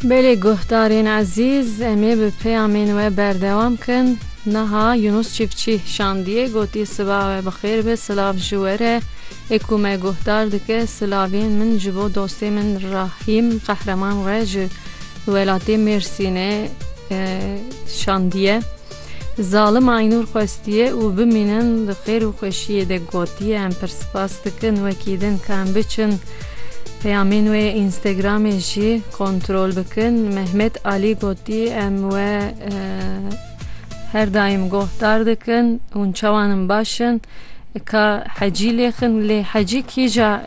Belê guhdarên ezîz, em ê bi peyamên we berdewam kin. Niha Yunus Çîfçî şandiyê gotî siba we bi xêr be silav ji we re. Ê ku me guhdar dike silavên min ji bo dostê min Rahîm Qehreman re ji welatê Mêrsînê şandiye. Zalim Aynur xwestiye û bimînin di xêr û xweşiyê de gotiye em pir spas dikin wekî din ka em biçin peyamên wê yê Instagramê jî kontrol bikin. Mehmet Alî gotî em we her daîm gohdar dikin hûn çawa in baş in ka hecî lêxin lê hecî kîja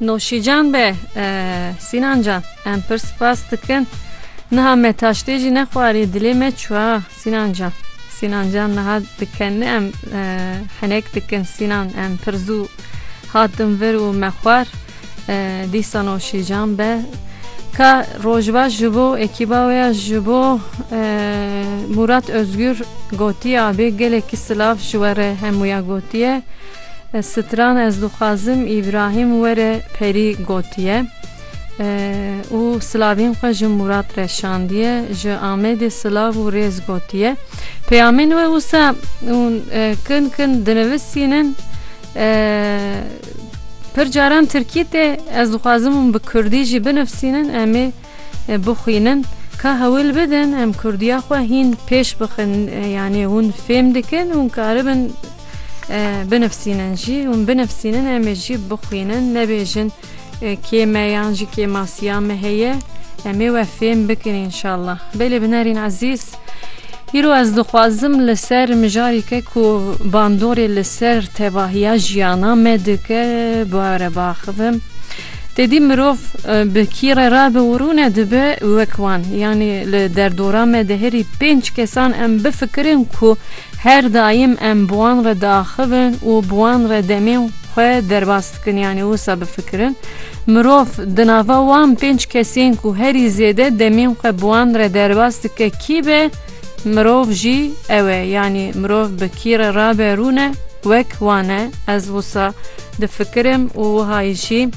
Noşîcan be Sînan can em pir spas dikin. Niha me taştê jî nexwarî dilê me çuwa Sînan can. Sînan can niha dikenni em e, henek dikin Sînan em pir zû hatin vir û me xwar e, dîsa noşîcan be. Ka rojbaş ji bo ekîba wê ya ji bo e, Murat Özgür gotiye abê gelekî silav ji we re hemûya gotiye. Stran ez dixwazim Îbrahîm were perî gotiye û silavên xwe ji Mûrat re şandiye, ji Amedê silav û rêz gotiye. Peyamên we wisa hûn kin kin dinivisînin. Pir caran tirkî tê, ez dixwazim hûn bi kurdî jî binivsînin, em ê bixwînin ka hewil bidin em kurdiya xwe hîn pêş bixin yanî hûn fêm dikin hûn karibin binifsînin jî hûn binifsînin em ê jî bixwînin nebêjin kê me yan jî kêmasiya me heye em ê we fêm bikin înşallah belê binerîn ezîz. Îro ez dixwazim li ser mijareke ku bandorê li ser tevahiya jiyana me dike were biaxivim. Tedî mirov bi kî re rabe û rûne dibe wek wan. Yanî li derdora me de herî pênc kesan em bifikirin ku her daîm em bi wan re diaxivin û bi wan re demên xwe derbas Dikin yanî wisa bifikirin. Mirov di nava wan pênc kesên ku herî zêde demên xwe bi wan re derbas dike kî be, mirov jî ew e. Yanî mirov bi kî re rabe rûne wek wan e. Ez wisa difikirim û wiha jî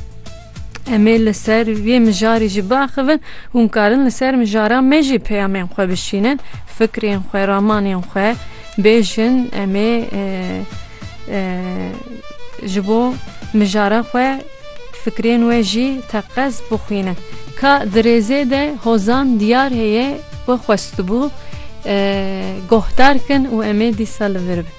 em ê li ser vê mijarê jî biaxivin. Hûn karin li ser mijara me jî peyamên xwe bişînin, fikrên xwe, ramanên xwe bêjin. Em ê. ji bo mijara xwe fikrên we jî teqez bixwîne. Ka di rêzê de hozan diyar heye ku xwestibû guhdar kin û em ê dîsa li vir bin.